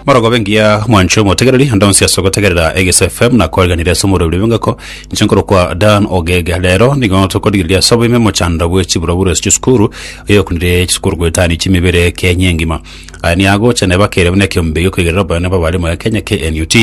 Morogobe ngiya mwancho motegereri onde onsi ase ogotegerera Egese FM na koeganire ase omorobiri bw'engoko inche nkorokwa Dan Ogega rero nigo tokorigereria ase oboime mochando bwe chiburoburo ase chisukuru oyokunire chisukuru goetania chimibere Kenya engima Aya niagocha nebakere buna ekeombe giokoigerera oboyone bw'abarimo Kenya KNUT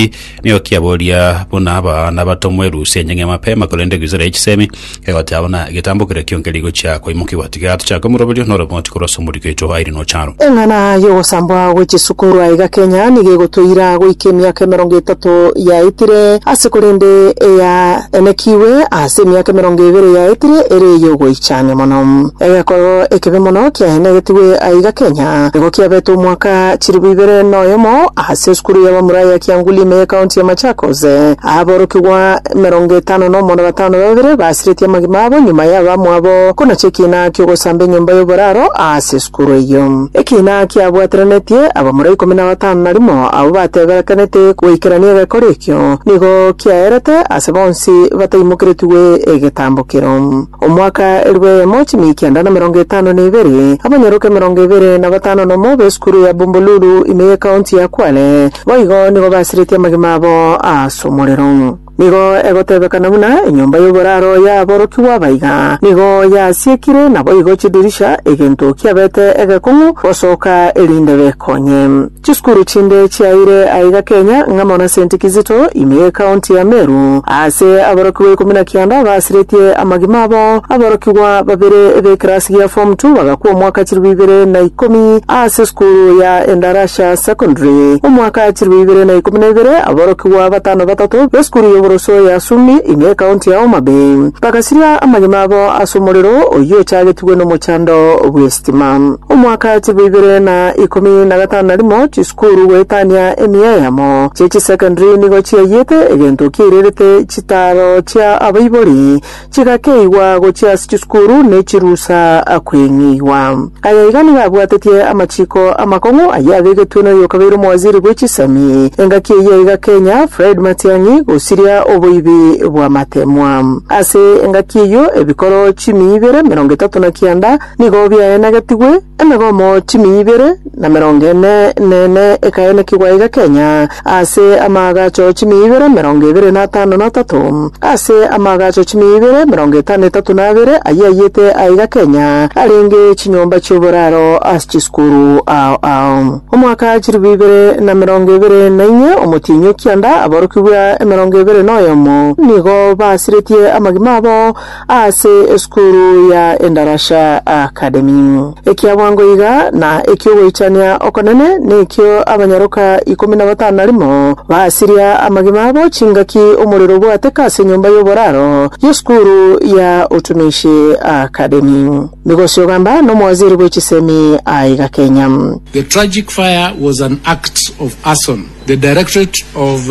Nigo kiaboria buna aba nabatomwa erusia enyang'e mapema, korende eguisera ye chisemi egoteba buna egetambokire kionke rigochia koimokiwa. Tiga tochake omoroberio nore omoti korwa ase omoriko oito aire nocharo. Eng'ana y'ogosambwa gwe chisukuru aiga Kenya nigo egotoira goika emiaka emerongo etato yaetire ase korende eyaenekigwe ase emiaka emerongo ebere yaetire ere ey'ogoichania mono. Egekoro ekebe mono kiaenegetigwe aiga Kenya nigo kiabete omwaka chilifu ibere noyomo ase. Sesukuru y'Abamura ya Kiangulime y'Ekaunti ya Machakos, aborokigwa emerongo etano nomo na batano babere basiretie amagima abo nyuma y'abamwabo konacha ekiina ki'ogosamba enyomba y'oboraro aa sesukuru eyio. Ekiina kiabwateranetie abamura ikomi na batano na rimo abwo bateberekanete goikerania egekori ekio, nigo kiaerete ase bonsi bataimokeretigwe egetambo kero. Omwaka elfu eyemo chimia ekianda na merongo etano na ebere, abanyoroke emerongo ebere na batano na omo b'esukuru ya Bombolulu ime y'ekaonti ya Kwale boigo nigo basiretie amagima abo as'omorero. Nigo egotebekana buna enyomba y'oboraro y'aborokigwa abaiga nigo yasiekire, naboigo chidirisha egento kiabete egekong'u gosoka erinde bekonye. Chisukuru chinde chiaire aiga Kenya ng'a mono Saint Kizito ime y'Ekaonti ya Meru. Ase aborokigwa ikomi na kianda baasiretie amagima abo, aborokigwa babere b'ekerasi gia Form Two bagakwa omwaka chilifu ibere na ikomi ase esukuru ya Endarasha Secondary. Omwaka chilifu ibere na ikomi na ibere aborokigwa batano batato b'esukuru y'oboroso ya Sumi ime y'Ekaonti ya Homa Bay bagasiria amagima abo ase omorero oyio ochagetigwe nomochando bw'esegi. Sitima. Omwaka chibo ibere na ikomi na gatano na rimo, chisukuru goetania emiya eyemo chie chisecondary nigo chiayete egento kiairerete chitaaro chia abaibori chigakeigwa gochia ase chisukuru ne chirusa kweng'eigwa. Aya iga nigo abwatetie amachiko amakong'u ayio abegetwe noyo okabeire omowaziri bwe chisemi engaki eyio iga Kenya, Fred Matiang'i, gosiria oboibi bw'amatemwa. Ase engaki eyio ebikoro chimi ibere, emerongo etato na kianda, Nigo biaenagetigwe, emegomo chimia ibere na emerongo ene nene ekaenekigwa iga Kenya, ase amaagacho chimia ibere emerongo ebere na atano na atato. Ase amaagacho chimia ibere emerongo etano etato na abere ayio aiyete aa iga Kenya, arenge chinyomba chi'oboraro ase chisukuru ao ao. Omwaka chilifu ibere na emerongo ebere na inye, omotienyi o kianda, aborokigwa emerongo ebere na oyomo nigo basiretie amagima abo, Ase esukuru ya Endarasha Academy. Ekia bwango iga na eki'ogoichania okonene nekio abanyaroka ikomi na batano na rimo basiria amagima abo chingaki omorero obwateka ase enyomba y'oboraro y'esukuru ya Utumishi Academy. Migosi ogamba n'omowaziri bwe chisemi aiga Kenya. The tragic fire was an act of arson. The Directorate of.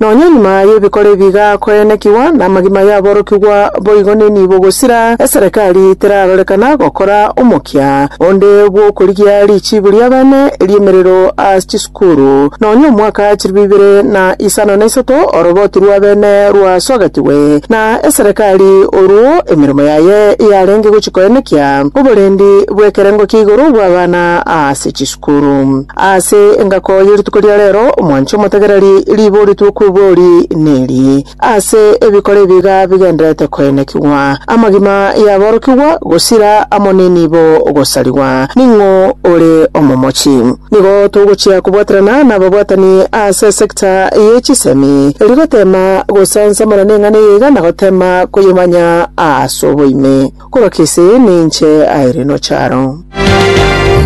Nonya nyuma y'ebikora ebi gakoenekigwa, namagima y'aborokigwa boigo nenibo gosira eserekari terarorekana gokora omokia onde bw'okorigia richiibu ri'abene ri'emerero ase chisukuru. Nonya omwaka chilifu ibere na isano na isato oroboti rw'abene rwasogatigwe, na eserekari orwo emeremo yaye yarenge gochia koenekia oborendi bw'ekerengo kia igoro bw'abana ase chisukuru. Korwa ase engako ye rituko ria reero, omwanche omotegereri riboritwe okw'ebori neri, ase ebikoro ebiga bigendererete koenekigwa, amagima y'aborokigwa, gosira amo nenibo gosarigwa. Ning'o ore omomochi? Nigo togochia kobwaterana nababwatani ase esecta ye chisemi, rigoteema gosansamera neng'ana eye iga na goteema koyemanya ase oboime. Korwa kese ninche aire nocharo.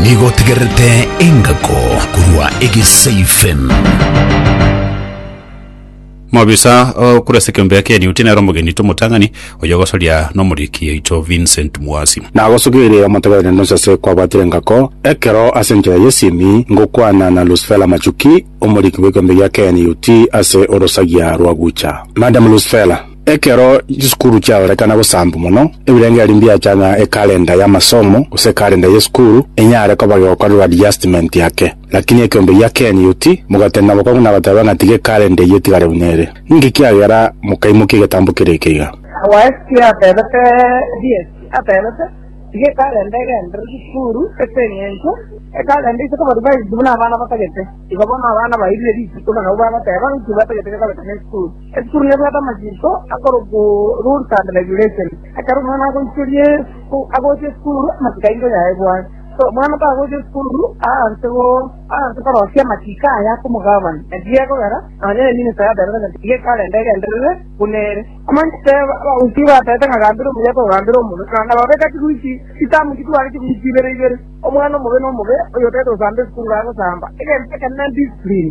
Nigo otegererete engako korwa egeseifen. Mobisa o korwa ase ekeombe eke Newt nere omogeni aito omotang'ani, oyo ogosoria nomoriki oito Vincent Mwasi. Nagosugeirie omotegereri nonsi ase kwabwatire engako, ekero ase enchera y'esimi ngokwana na Lusfela Machuki, omoriki bw'ekeombe gia Kenya Newt ase orosagia rwa Gucha. Madam Lusfela. Ekero chisukuru chiarorekana gosaambwa mono, ebirengererio mbiacha ng'a ekalenda y'amasomo gose ekalenda y'esukuru enyare koba gegokorerwa adjustment ake. Lakini ekeombe gia Ken Yuti mogatenda bokong'u na goteba ng'a tiga ekalenda eyio etigare buna ere. Ninki kiagera mokaimokia egetambo kere eke iga? Waisiki atebete rieti atebete, Tiga ekalenda egenderere chisukuru ase eng'encho ekalenda ise koba revised buna abana batagete. Igo bono abana bairire rituko na nabo bagoteba nki batagete gekorekana esukuru. Ekurune bwate amachiko akorokwa Rules and Regulations, ekero omwana agoichoria esu agocha esukuru, amachiko aye nkoyaebwate. So omwana tagocha esukuru aanse go aanse korosia amachiko aya akomogabani. Naki gekogera nonye Eminista yatebete ng'a tiga ekalenda egenderere buna ere. Omanyete teba abagusii batebete ng'a gambera omuya togambera omobe, na nababe gati goika chitamu chitware chiburi chibere ibere. Omwana omobe nomobe, oyotagete gosamba esukuru gagosamba. Egento ekenene discipline.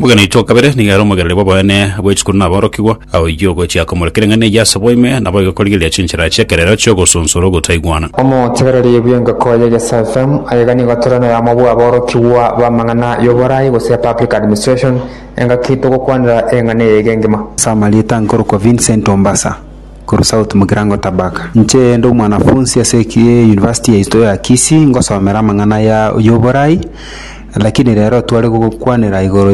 Omogeni oito o kabere nigo ere omogereri bw'oboene bwe chikuru na aborokigwa. Oyio ogochia komorekera eng'ana eyio ase boime, nabo egokorigereria chinchera chi'ekerero chi'ogosunsora ogotaigwana. Omotegereri bw'engoko ye Gesalfem, aye iga nigo tore noyomo bw'aborokigwa b'amang'ana y'oboraai gose public administration, engaki togokwanera eng'ana eye ege engima. Ase amarieta nkorokwa Vincent Ombasa. korwa south mokirango Tabaka. Inche inde omwanafunsi ase university yaito ya Kisii ngosomera amang'ana ya oborai lakini rero tware gokwanera igoro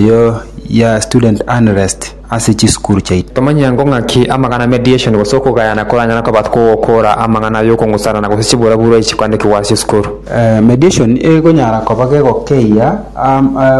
ya student unrest ase chisukuru chiaito. Tomanye ango ng'aki amang'ana mediation gose okogayana koranyare koba kogokora amang'ana ayokong'usana gose chiburabura echi chikwanekigwa ase esukuru. Mediation egonyara koba gegokeyia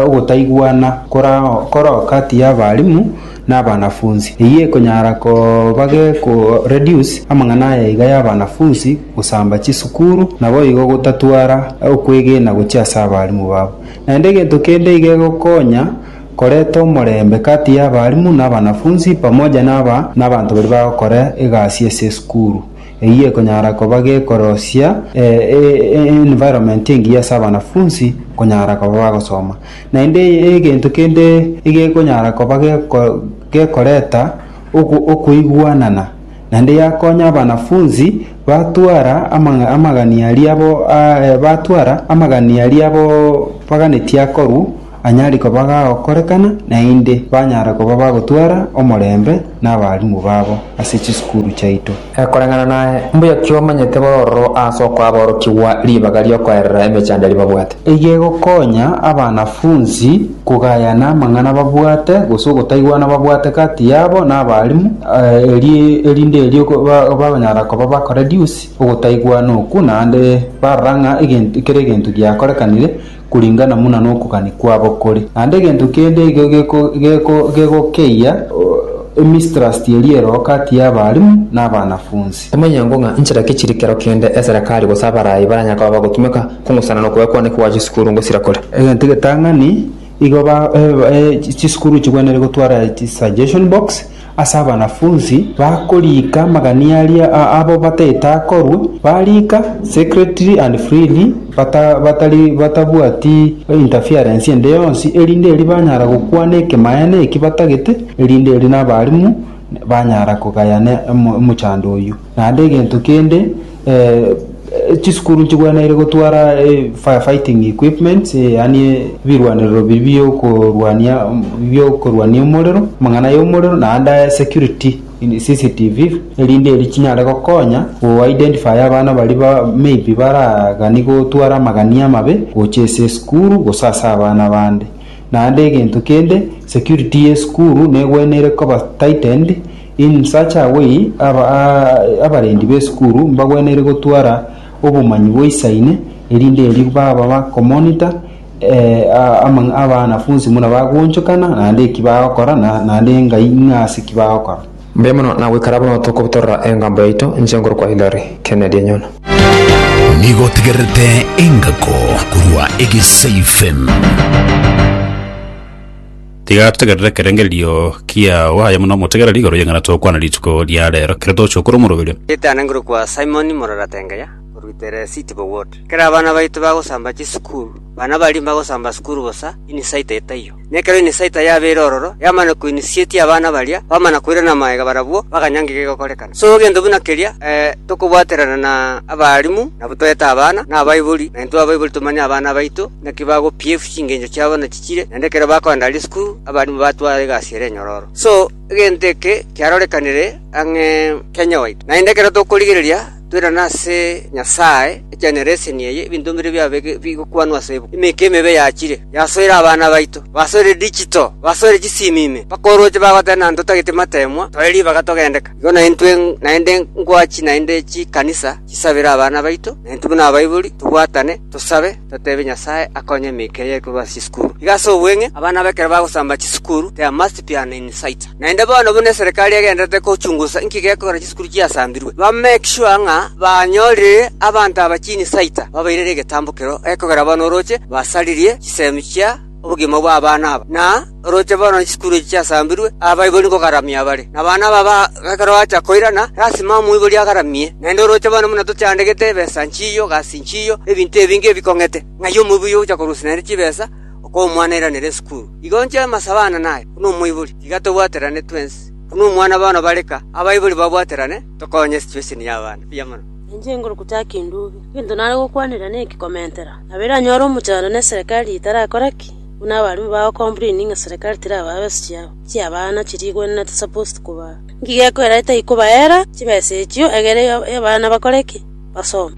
ogotaigwana korao kati ya abalimu. nabanafunsi. Eyio ekonyara koba geko reduce amang'ana aya iga y'abanafunsi gosamba chisukuru, naboigo gotatwara okwegena gochia ase abalimu babo. Naende egento kende iga egokonya koreta omorembe kati y'abalimu nabanafunsi pamoja naba nabanto baria bagokora egasi ase esukuru. Eyio ekonyara koba gekorosia environment engiya ase abanafunsi konyara koba bagosoma. Naende egento kende egekonyara koba gekoreta okoigwanana, naende yakonya abanafunsi batwara amagani aria abo baganetie akorwa anyare koba gagokorekana, naende banyare koba bagotwara omorembe nabalimu babo ase chisukuru chiaito. E Koreng'ana naye, mbuya ki omanyete bororo ase okwaborokigwa ribaga riokoerera emechando eria babwate? Eyio egokonya abanafunsi kogayana amang'ana babwate gose ogotaigwana babwate gati yabo na abalimu, erio erinde erio bagonyara koba ba koreduce ogotaigwana okwo naende barora ng'a egento kera egento giakorekanire. koringana buna nokogania kwabo kore, naende egento kende igo gegokeyia emistrust ye riero gati y'abarimu na abanafunsi. Tomanyerango ng'a inchera ki chiri kero kende eserekari gose abarai baranyare koba bagotumeka kong'usana nokoegwa kwane kobua chisukuru ngosira kore. Egento egetang'ani, igo chisukuru chigwenerire gotwara chisuggestion box Ase abanafunsi bakoriika amagania aria abwo bataete akorwe, bariika secretly and freely batari batabwati interference ende yonsi, erinde erio banyara gokwana ekemaene eki batagete, erinde erio nabarimu banyara kogayana omochando oyio. Naende egento kende, eh, chisukuru nchigweneire gotwara eh, firefighting equipments, eh, yaani eh, ebirwanerero biri biokorwania biokorwania omorero, amang'ana y'omorero, naende aya security in CCTV, erinde eri chinyare gokonya goidentifaya abana bari ba maybe baragani gotwara amagania amabe gocha ase esukuru gose ase abana bande. Naende egento kende, security y'esukuru negweneire koba tightened, Insacha aboi abarendi b'esukuru mbagwenerire gotwara obomanyi boisaine, erinde erio baba bakomonita abanafunsi buna bagoonchokana, naende eki bagokora, naende engai ng'a ase eki bagokora. Mbuya mono na goikara buna tokobutorora engambo yaito inche nkorokwa Hillary Kennedy Enyono. Nigo otegererete engako korwa Egesaifm. Tiga totegerere ekerengererio kiao, aye buna omotegereri igoro y'eng'ana tokwana rituko ria reero, kere tochia okora omorobio. Ritanangerwe kwa Simon morora Tengeya, oruite Resiti Bowood. Ekero abana baito bagosamba chisukuru, bana baria mbagosamba sukuru bosa, inisaita etaiyo. Na ekero inisaita yabeire ororo, yamana koinisietia abana baria, bamana koirana amaega barabwo, bakanya ng'iki gegokorekana. So gento buna keria, ee, tokobwaterana na abaalimu, nabo toete abana, na abaibori, na intwe abaibori tomanye abana baito, naki bagopief chingencho chiabo na. bachiire, naende ekero bakoenda risiko abarimu batwara egasi ere enyororo. So, egento eke kiarorekanire ang'e Kenya gwaito, naende ekero tokorigereria toirane ase Nyasae egenereseni eye, ebinto mbire biabe bigokwanwa ase ebuku. Emeke emebe yachiire, yasoire abana baito, basoire digital, basoire chisimi ime, mpaka orooche bagoteba na ntotagete matemwa, toe ribaga togendeka. Igo naintwe naende ngwachi naende chikanisa chisabere abana baito, naintwe buna abaibori tobwatane, tosabe. Toteebie Nyasae akonye emeke eye ekorwa ase chisukuru. Igo ase obweng'e, abana aba ekero bagosamba chisukuru, there must be an insider. Naende bono buna eserekari egendererete gochungusa inki gekogera chisukuru chiasambirwe, ba make sure ng'a banyorire abanto aba chinsider, babairere egetambo kero gekogera bono oroche basaririe chisemi chia obogima bw'abana aba, na Oroche bono chisukuru echi chiasambirwe, abaibori nkogaramia bare, na abana aba ekero bacha koirana, lasima omoibori agaramie. Naende oroche bono buna tochandegete ebesa nchiyo, gasi nchiyo, na ebinto ebinge ebikong'ete, ng'ai omoibori ogocha korusia naende chibesa, okoa omwana airanere esukuru? Igo inche amase abana naye, buna omoibori, tiga tobwaterane twensi. Buna omwana bono bareka, abaibori babwaterane, tokonye situation y'abana buya mono. Inche inkorokwa Jack Ndubi. Egento nare gokwanera neke komentera, nabo eranyore omochando na eserekari etarakora ki? Buna abarwani bao complaini ng'a serikali tirabae besa chiabo chi'abana chirigwenerete supposed kobaa, nki gekoira etai kobaera chibesa echio egere abana bakore ki? Basome.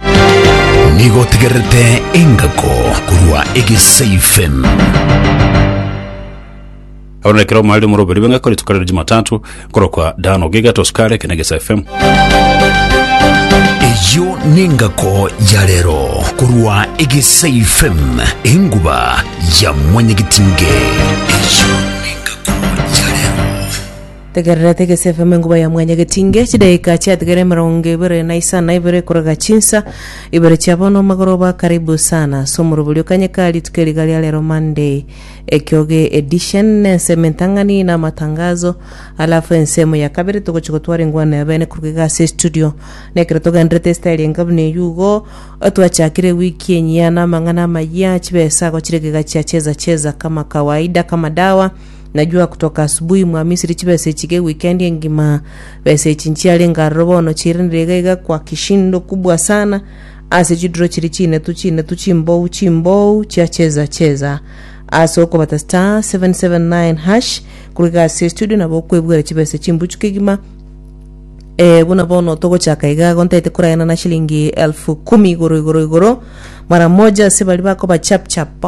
Nigo otegererete engako korwa egesaifen. Oro nekero omarire omoro obere beng'ako rituko rire Jumatatu korokwa Dano Giga Tosukare kina Gesa FM. eyo nengako ya rero korwa egesa ifem enguba ya mwanyagitinge eyo nengako ya rero Tegerera tegese FM enguba ya mwanya getinge chidaika chiatigere emerongo ibere na isana ibere korega chinsa ibere chia bono magoroba karibu sana somoroborio kanyekari tuke riga ria rero Monday Ekioge Edition, na ensemo entang'ani na amatangazo. Alafu ensemo ya kabere togochia gotwara engwano ya bene korwa iga ase estudio. Na ekero togendererete estaili enga buna eyio igo, twachakire ewiki enyia na amang'ana amayia, chibesago chiria iga chia cheza cheza kama kawaida kama dawa. Najua kutoka asubuhi mwa Misri chibesa echi ge wikendi engima. Besa echi nchiarenge aroro bono chiiranire iga iga kwa kishindo kubwa sana. ase chiduro chiria chinetu chinetu chimbou chimbou chia cheza cheza ase okobata star 779 hash korwa iga ase estudio nabo okwebwera chibesa chimbuchu kegima Eh, buna bono togochaka iga igo ntaete korayana na shilingi elfu kumi igoro igoro igoro mara moja ase bari bakoba chap chap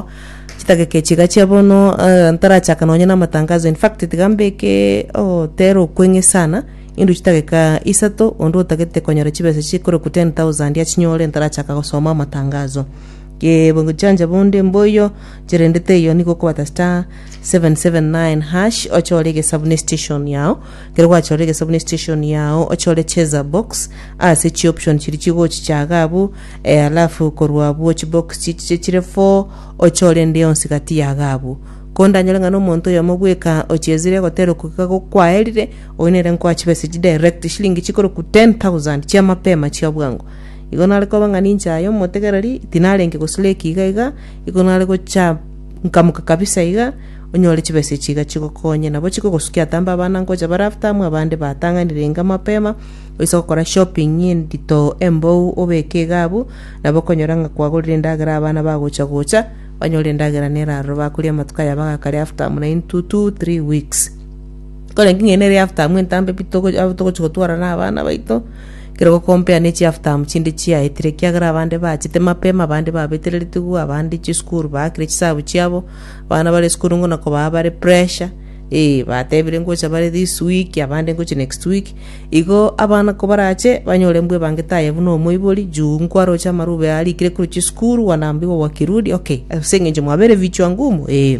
chitageke chiga chia bono eh, ntarachaka nonye na amatangazo in fact tiga mbeke oh, tero okweng'e sana Intwe chidageka isato, onde otagete konyora chibesa chikorokwa 10,000 achinyore ntarachaka gosoma amatangazo. Ge bochanja bonde mboiyo cherendete eyo nigo okobata star 779 hash ochore egesabu ne station yao. Kero gwachora egesabu ne station yao ochore cheza box ase chi option chiri chigochichaga abwo eh, alafu korwa abwo chi box chichiche chire 4 ochore ende yonsi gati yaga abwo. Ko ndanyore ng'a nomonto oyomo bweka ochezire egotera okogika gokwaerire Oyo nere nkoa chibesa echi direct eshilingi chikorokwa 10,000 chia mapema chia bwango. Igo nare koba ng'a ninche aye omotegereri, tinarenge goslake iga iga, igo nare gocha nkamoka kabisa iga, onyore chibesa echi iga chigokonye. Nabo chikogosukia ata mbe abana nkocha bare after amo abande batang'anire inga mapema, oise gokora shopping endito embou obeke iga abwo, nabo okonyora ng'a kwagorire endagera abana bagocha gocha, banyore endagera nera aroro bakoria amatuko aya bagakare after amo naintwe two, three weeks. Kore inki ng'ende ere eartamu entambe pi togo abo togochi gotwara na abana baito, ekero gokompea ne chiartamu chinde chiaetire, ekiagera abande bachete mapema, abande babetereretigwe, abande chisukuru baakire chisabu chiabo, abana bare esukuru ngona kobaa bare pressure, eh batebire ngocha bare this week, abande ngochi next week, igo abana kobarache banyore mbwa ebangete aye buna omoibori, juu nkwaroche amarube arikire korwa chisukuru, wanambiwa wakirudi, okay, ase eng'encho mwabere vichwa ngumu, eeh.